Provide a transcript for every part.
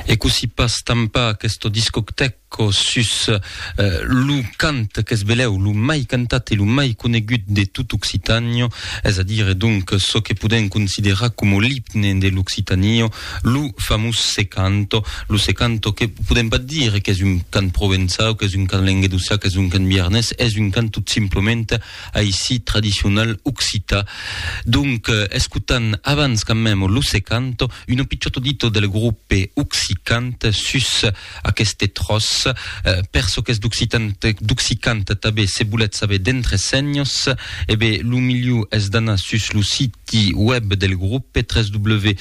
E cossí pas tampar aqueste discotèco sus lo cant qu'es belèu, lo mai cantat e lo mai conegut de tot Occitània, es a dire donc çò que podèm considerar coma l'imne de l'Occitània, lo famós Se canto, lo Se canto que podèm pas dire qu'es un cant provençau, qu'es un cant languedocià, qu'es un cant biarnés, es un cant tot simplement, aisit tradicional occità. Donc, escotan abans quand même Lo Secanto, uno picciotto dito del gruppe Occicant sus aqueste tròç. Per çò qu'es d'Occicant tabé, se volètz saber d'entresenhos, e ben, lo milhor es d'anar sus lo siti web del gruppe, www.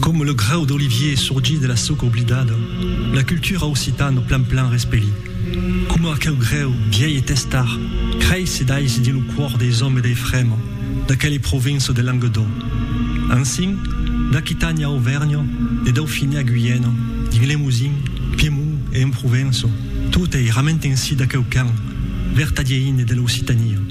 Coma lo grau d'olivier sorgit de la soca oblidada, la cultura occitana plan plan respeli. Coma aqueu greu, viei e testar, creissi d'aisi dins lo còr deis òmes dei Frema, d'aqueli provinça de Languedoc. Ansin, d'Aquitània a Auvèrnha, de Daufinia a Guyena, dins Lemosin, Piemont e en Provença, tot ei rament ensi d'aqueu can, vertadier ine de l'Occitania.